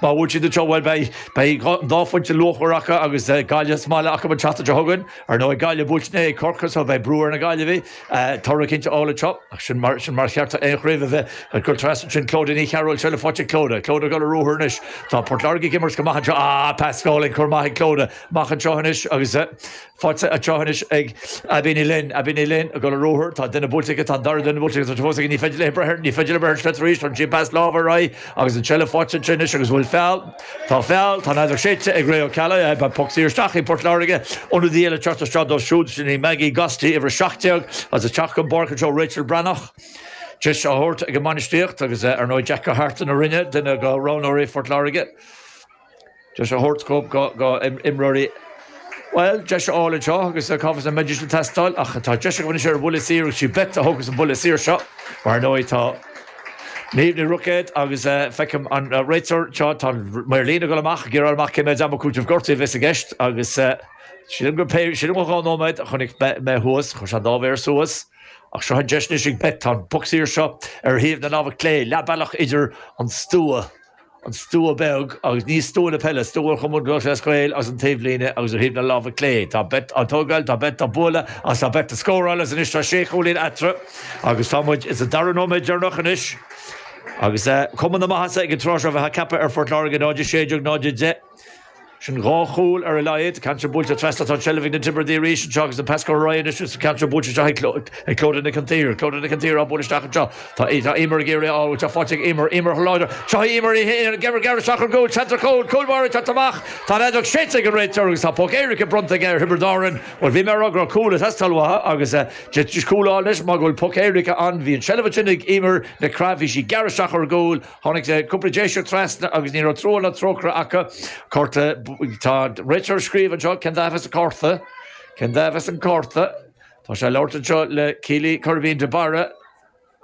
Má bhuann siad anseo, bhuel, beidh an dá phointe luachmhar acu agus Gaillimh sa mbaile acu an tseachtain seo chugainn. Ar ndóigh, Gaillimh buailte inné ag Corcaigh so beidh brú ar na Gaillimhigh toradh cinnte a fháil anseo. Ach sin mar ba cheart d'aon chraobh a bheith. Ag dul trasna ansin, Clodagh Ní Chearúil, seilbh faighte ag Clodagh. Clodagh ag dul ar ruathar anois. Tá Port Láirge ag imirt go maith anseo. Ah, pas álainn, cor maith ag Clodagh. Amach anseo anois agus. Faighte anseo anois ag Abby Ní Fhloinn. Abby Ní Fhloinn ag dul ar ruathar, tá duine buailte aici, tá an dara duine buailte aici, tá sé fós aici, ní féidir léi breith air, ní féidir léi breith ar an sliotar arís, tugann sí an pas láimhe ar aghaidh agus an tseilbh faighte aici anois agus bhuel feall, tá feall, tá an fheadóg séidte ag Ray Ó Ceallaigh, beidh poc saor isteach ag Port Láirge, ionadaí eile ag teacht isteach dóibh siúd, sin í Maggie Gostl, uimhir 17, is ag teacht den pháirc anseo, Rachel Breathnach, deis á thabhairt ag an mbainistíocht agus, ar ndóigh, Jack Ó hAirt ina dhuine de na roghnóirí Phort Láirge. deis a thabhairt do imreoirí Bhuel, deis a fháil anseo agus cá bhfios an mbeidís ag teastáil ach tá deis agam anois ar an mbuille saor agus sí Beth a thógas an buille saor seo mar ar ndóigh tá Niamh Ní Ruicéad agus feicim an réiteoir anseo tá an maor líne ag dul amach ag fáil amach cé mhéad ama cúitimh gortaithe a bheas i gceist agus sílim gur pé sílim gur dhá nóiméad a chonaic mé thuas chuir sé an dá mhéar suas ach seo an deis anois ag Beth tá an poc saor seo ar thaobh na láimhe clé leath bealach idir an stua an stua beag agus ní stua na peile, stua Chumann Lúthchleas Gael agus an taobhlíne agus ar thaobh na láimhe clé tá Beth á tógáil, tá Beth á bualadh agus tá Beth ag scóráil agus anois tá sé chúilín eatarthu agus tá muid sa dara nóiméad deireanach anois agus cuma na maitheasa ag an tráth seo bheifeá ag ceapadh ar Phort Láirge, 0-16, 0-10. Sin dhá chúl ar a laghad. Ceann ard buailte trasna, tá an tseilbh ag na Tiobradaigh arís anseo agus an pas curtha ar aghaidh anois sa cheantar buailte anseo ag Clodagh Nic an tSaoir. Clodagh Nic an tSaoir á bualadh isteach anseo, tá Eimear ag iarraidh é a fháil, tá sé faighte ag Eimear, Eimear thar n-ais, seo í Eimear, Eimear ag gearradh isteach chun gcúil, seans ar chúl, cúl báire ag teacht amach, tá an fheadóg séidte ag an réiteoir agus tá poc éirice bronnta aige ar Thiobraid Árann. Bhuel bhí mé a rá go raibh cúl ag teastáil uathu agus cúl á fháil anois mar go bhfuil poc éirice ann, bhí an tseilbh ansin ag Eimear Nic Craith, bhí sí ag gearradh isteach chun gcúil, Tháinig cúpla Déiseach trasna agus ní raibh trua ná trócaire acu. Cárta, Tá an réiteoir ag scríobh anseo, cén dath a bheas ar an gcárta? Cén dath a bheas ar an gcárta? Tá sé ag labhairt anseo le Keeley Coirbín de Barra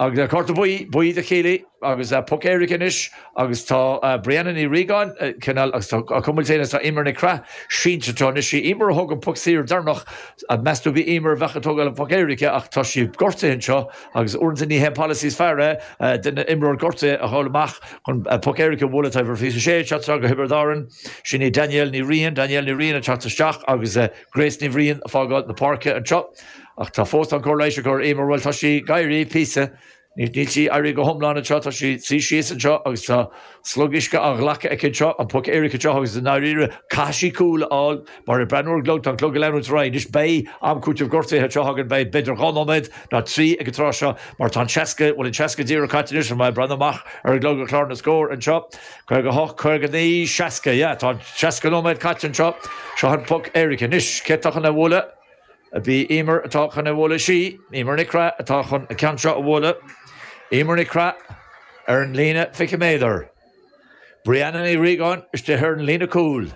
agus cárta buí, buí do Keeley agus poc éirice anois agus tá Brianna Ní Riagáin cineál á cuimilt féin agus tá Eimear Nic Craith sínte anseo. Anois, sí Eimear a thóg an poc saor deireanach. Meas tú, ab í Eimear a bheadh ag tógáil an phoc éirice ach tá sí gortaithe anseo. Agus uaireanta ní hé an polasaí is fearr é duine, imreoir gortaithe a ghabháil amach chun poc éirice a bhualadh Tá uimhir 26 ag teacht isteach do Thiobraid Árann. Sin í Danielle Ní Riain, Danielle Ní Riain ag teacht isteach agus Grace Ní Bhriain ag fágáil na páirce anseo. Ach tá fós, tá an chóir leighis á cur ar Eimear, bhuel, tá sí ag éirí píosa. Níl sí ag éirí go hiomlán anseo, tá sí ag suí síos anseo agus tá. Slog uisce á ghlacadh aici anseo, an poc éirice anseo agus i ndáiríre, caithfidh sí cúl a fháil mar ag breathnú ar an gclog, tá an clog ag leanúint ar aghaidh. Anois beidh am cúitimh gortaithe anseo againn, beidh b'fhéidir dhá nóiméad nó trí ag an tráth seo mar tá an seasca, bhuel an seasca díreach caite anois, mé ag breathnú amach ar an gclog ag clár na scór anseo? Caoga hocht, caoga naoi, seasca, yeah tá an seasca nóiméad caite anseo, seo an poc éirice. Anois, cé atá chun a bhualadh? ab í Eimear atá chun a bhualadh, is í, Eimear Nic Craith atá chun a ceann seo a bhualadh, Eimear Nic Craith ar an líne fiche méadar, Brianna Ní Riagáin istigh ar an líne cúil.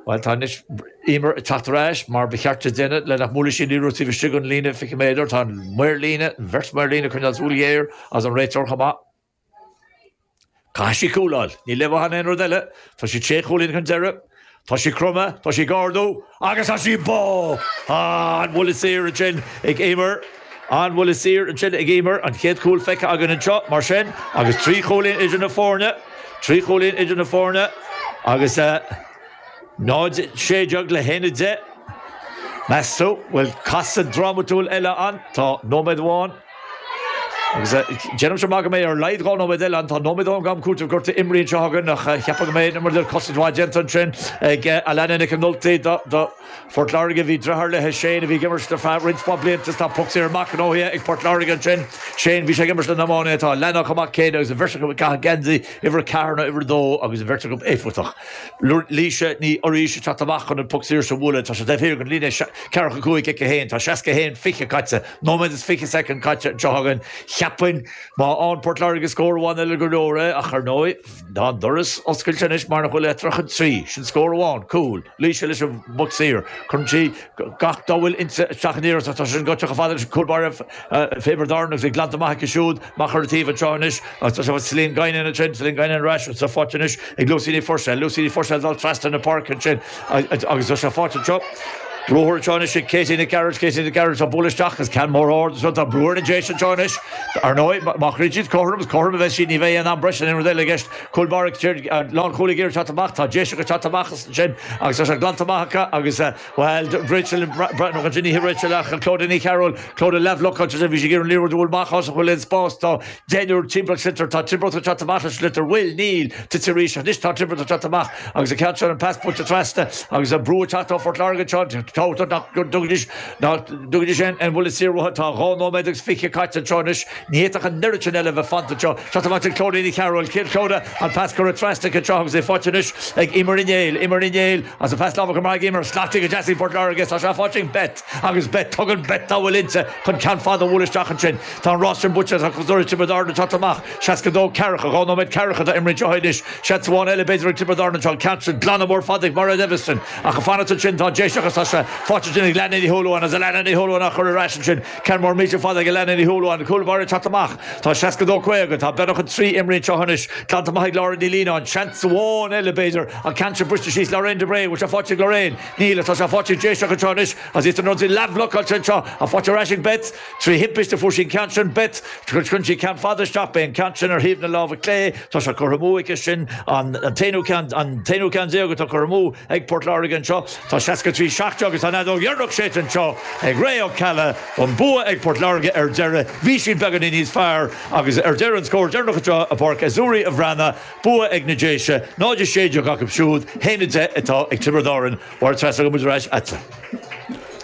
Bhuel, tá anois Eimear ag teacht ar ais mar ba cheart di a dhéanamh le nach mbuailfidh sí an liathróid taobh istigh den líne fiche méadar, tá an maor líne, an bheirt mhaor líne ag coinneáil súil ghéar is an réiteoir chomh maith. Caithfidh sí cúl a fháil. Níl aon mhaith in aon rud eile. Tá siad sé chúilín chun deireadh. Tá sí cromtha, tá sí ag ardú, agus tá sí beo! An-bhuille saor ansin ag Eimear. An-bhuille saor ansin ag Eimear. An chéad chúl feicthe againn anseo, mar sin, agus trí chúilín idir na foirne. Trí chúilín idir na foirne, agus eh. 0, 16 le haon 10. Meas tú, bhfuil casadh drámatúil eile ann? Tá. Nóiméad amháin. Agus déanaimse amach go mbeidh ar a laghad dhá nóiméad eile, an nóiméad am cúitimh gortaithe imeartha anseo againn, ach cheapfainn go mbeidh aon imirt cosaint mhaith déanta ansin ag Alanna Nic an Ultaigh do Phort Láirge. Bhí dreatháir léithe, Shane, a bhí ag imirt ar feadh roinnt mhaith blianta is tá poc saor maith gnóthaithe ag Port Láirge ansin. Shane, bhí sé ag imirt le hiománaithe Phort Láirge chomh maith céanna agus an bheirt acu ag caitheamh geansaí uimhir a ceathair nó uimhir a dó agus an bheirt acu éifeachtach. Laoise Ní Fhoraois ag teacht amach chun an poc saor sin a bhualadh, tá sé taobh thiar den líne, ceathracha cúig, cic a haon. Tá seasca a haon fiche caite. Nóiméad is fiche soicind caite anseo againn. Cheapfainn má fhaigheann Port Láirge scór amháin eile gur leor é, ach ar ndóigh tá an doras oscailte anois mar nach bhfuil eatarthu ach an trí, sin scór amháin, cúl, Laoise leis an bpoc saor. Cuireann sí gach dá bhfuil inti isteach in iarracht ach tá sé sin ag dul isteach chomh fada le cúl báire Thiobraid Árann agus é glanta amach aici siúd. Amach ar an taobh an tráth anois agus tá sé faighte, Celine Guinan ansin, Celine Guinan ar ais agus tá faighte anois ag Lucy Ní Phuirséil, Lucy Ní Phuirséil ag dul trasna na páirce ansin agus tá sé faighte anseo. Ruathar anseo anois ag Katie Nic Gearailt, Katie Nic Gearailt á bualadh isteach agus ceann mór ard anseo, tá brú ar an Déis anseo anois, ar ndóigh, má chríochnaíonn siad cothrom, is cothrom a bheas siad, ní bheidh aon am breise ná aon rud eile i gceist. Cúl báire, lánchúlaí ag iarraidh teacht amach, tá Déiseach ag teacht amach as ansin agus tá sé glanta amach acu agus. Bhuel, Rachel, nach ea, ní hí Rachel ach Clodagh Ní Chearúil, Clodagh leathbhlocáilte is ea bhí sí ag iarraidh an liathróid a bhualadh amach áit a bhfuil an spás. Tá deichniúr timpeall an tsliotair, tá Tiobraid ag teacht amach leis an sliotar, bhuel, níl, tite arís, ach anois tá Tiobraid ag teacht amach agus an ceann seo, an pas buailte trasna agus an brú ag teacht ar Phort Láirge anseo, tábhachtach nach dtugaidís aon bhuille saor uathu, tá dhá nóiméad agus fiche caite anseo anois. Ní fhéadfadh an oiread sin eile a bheith fanta anseo. Seo Tomás de Clóirthín, a shearradh an chéad sheoda, an pas curtha trasna ag Crenshaw agus é faighte anois ag Eimear Uí Néill. Eimear Uí Néill agus an pas láimhe go maith ag Eimear. Scaipthe go deas ag Port Láirge is tá sé faighte ag Beth agus Beth, tugann Beth dá bhfuil inti chun ceann fada a bhualadh isteach ansin. Tá an rás sin buaite agus tá cosúil le Tiobraid Árann anseo amach, 62 ceathracha, dhá nóiméad ceathracha atá imrithe anseo anois. Seans amháin eile b'fhéidir ag Tiobraid Árann anseo, an ceann sin, glanadh mór fada ag Mairéad Eviston, ach ag fanacht ansin tá Déiseach is tá sé faighte ansin ag Alannah Ní Shúilleabháin agus Alannah Ní Shúilleabháin á chur ar ais ansin. Ceann mór millteach fada ag Alannah Ní Shúilleabháin, an cúl báire ag teacht amach. Tá 62 50. Tá beagnach an trí imrithe anseo anois. Glanta amach ag Laura Ní Lionáin. Seans amháin eile b'fhéidir. An ceann sin briste síos Lorraine de Brae. An bhfuil sé faighte ag Lorraine? Níl, ach tá sé faighte ag Déiseach anseo anois agus iad san ionsaí leathbhlocáilte anseo. Ach faighte ar ais ag Beth. Trí thimpist a fuair sí an ceann sin, Beth. Cuireann sí ceann fada isteach. Beidh an ceann sin ar thaobh na láimhe clé. Tá sé curtha amú aici sin. An t-aonú ceann déag atá curtha amú ag Port Láirge anseo. Tá 63 seacht agus tá an fheadóg dheireanach séidte anseo ag Ray Ó Ceallaigh an bua ag Port Láirge ar deireadh. Bhí siad beagáinín níos fearr agus ar deireadh an scór deireanach anseo i bPáirc Azzurri an Bhreathnaigh, bua ag na Déise, 0, 16 acu siúd, 1, 10 atá ag Tiobraid Árann. Mháire Treasa agus muid ar ais agat.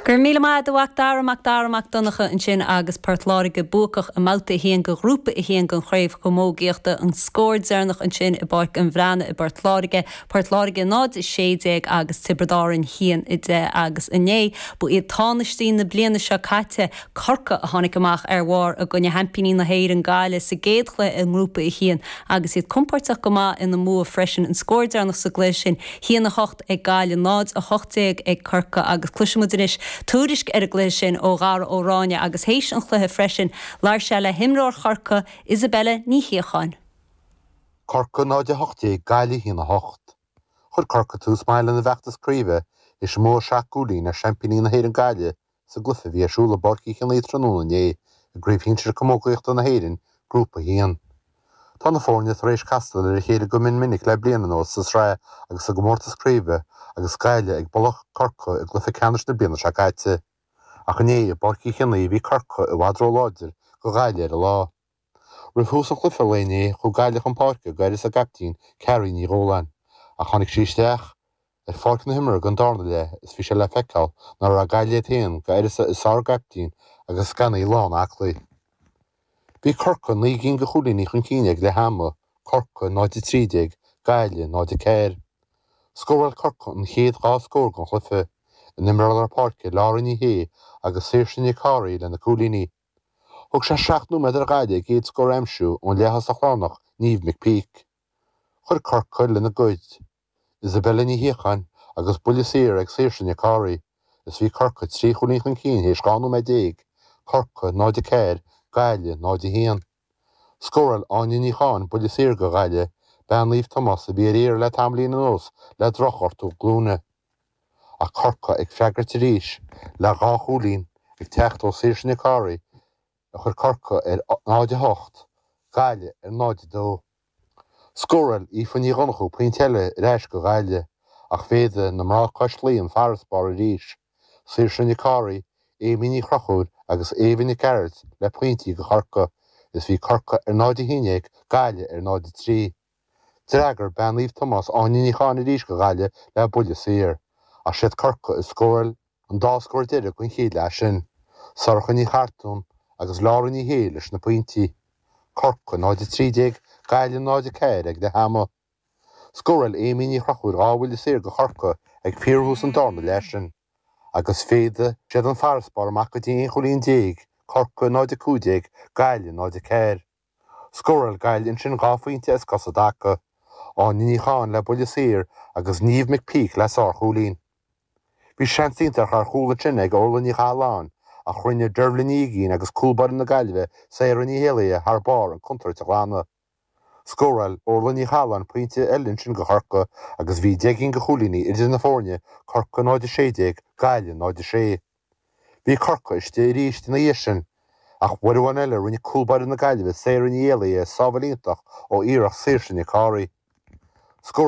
Go raibh míle maith agat a Mhac Dara Mac Dara Mac Donncha ansin agus Port Láirge buacach i mBabhta 1 de Ghrúpa 1 den Chraobh Chamógaíochta, an scór deireanach ansin i bPáirc an Bhreathnaigh i bPort Láirge, Port Láirge 0, 16 agus Tiobraid Árann 1, 10 agus inné ba iad tánaistí na bliana seo caite, Corcaigh, a tháinig amach ar bharr i gcoinne sheaimpíní na hÉireann, Gaillimh, sa gcéad chluiche i nGrúpa 1 agus iad compóirteach go maith ina mbua freisin. An scór deireanach sa gcluiche sin, 1, 8 ag Gaillimh 0, 18 ag Corcaigh agus cloisimid anois tuairisc ar an gcluiche sin ó Dhara Ó Ráinne agus théis an chluiche freisin labhair sé le himreoir Chorcaí, Isobel Ní Shíocháin. Corcaigh 0 18 Gaillimh 1 8. Chuir Corcaigh tús maith lena bhfeachtas craoibhe is bua seacht gcúilín ar seaimpíní na hÉireann Gaillimh sa gcluiche a bhí ar siúl i bPáirc Uí Chionaoith tráthnóna inné i gCraobh Shinsir Camógaíochta na hÉireann, Grúpa 1. Tá na foirne tar éis castáil ar a chéile go mion minic le bliain anuas sa tsraith agus sa gcomórtas craoibhe agus Gaillimh ag bualach Corcaigh i gcluiche ceannais na bliana seo caite. Ach inné i bPáirc Uí Chionaoith bhí Corcaigh i bhfad róláidir do Ghaillimh ar an lá. Roimh thús an chluife lae inné chuaigh Gaillimh chun páirce d'uireasa a gcaiptín Carrie Ní Dhúláin ach tháinig sí isteach ar pháirc na himeartha don dárna leath is bhí sé le feiceáil ná raibh Gaillimh iad féin d'uireasa a gcaiptín agus gan í lán aclaí. Bhí Corcaigh naoi gcinn de chúilíní chun cinn ag leath ama, Corcaigh 0 13, Gaillimh 0 4. Scóráil Corcaigh an chéad dhá scór den chluife, na himreoirí lár páirce Laura Ní Aodha agus Saoirse Nic Cárthaigh leis na cúilíní, Thóg sé seacht nóiméad ar Ghaillimh a gcéad scór a aimsiú ón leaththosach lárnach Niamh McPeake. Chuir Corcaigh lena gcuid, Isabella Ní Shíocháin agus buille saor ag Saoirse Nic Cárthaigh, is bhí Corcaigh trí chúilín chun cinn théis 12 nóiméad, Corcaigh 0-4 Gaillimh 0-1. Scóráil Áine Ní Chatháin buille saor go Gaille, bean Naomh Tomás a bhí ar iarraidh le tamaillín anuas le drochghortú glúine. Ach Corcaigh ag freagairt arís le dhá chúilín, ag teacht ó Saoirse Nic Cárthaigh a chuir Corcaigh ar 0:08, Gaille ar 0:02. Scóráil Aoife Ní Dhonnchú pointe eile ar ais go Gaillimh ach mhéadaigh na mná cois Laoi an farasbarr arís, Saoirse Nic Cárthaigh, Amy Ní Chrochúir agus Éabha Nic Gearailt le pointí go Corca is bhí Corca ar 0 11, Gaillimh ar 0 3. D'fhreagair Bean Naomh Tomás Áine Ní Chatháin arís go Gaillimh le buille saor ach siad Corca a scóráil An dá scór deiridh den chéad leath sin, Sorcha Ní Chartáin agus Laura Ní Shé leis na pointí. Corcaigh 0 13 Gaillimh 0 4 ag leath ama. Scóráil Amy Ní Chrochúir dhá bhuille saor go Chorcaigh ag fíorthús an darna leath sin agus mhéadaigh siad an farasbarr amach go dtí aon chúilín déag, Corcaigh 0 15 Gaillimh 0 4. Scóráil Gaille ansin dhá phointe as cosa i dtaca, Áine Ní Chatháin le buille saor agus Niamh McPeake le sárchúilín. Bhí seans iontach ar chúl ansin ag Orlaith Ní Chathaláin ach rinne Dervla Ní Uiginn agus cúl báire na Gaillimhe Sarah Ní hÉalaithe thar barr an contúirt a ghlanadh. Scóráil Orlaith Ní Chathaláin pointe eile ansin go Chorca agus bhí deich gcinn de chúilíní idir na foirne, Corca 0-16, Gaillimh 0-6. Bhí Corcaigh istigh arís ina dhiaidh sin, ach uair amháin eile rinne cúl báire na Gaillimhe Sarah Ní hÉalaithe sábháil iontach ó iarracht Saoirse Nic Cárthaigh. Scóráil.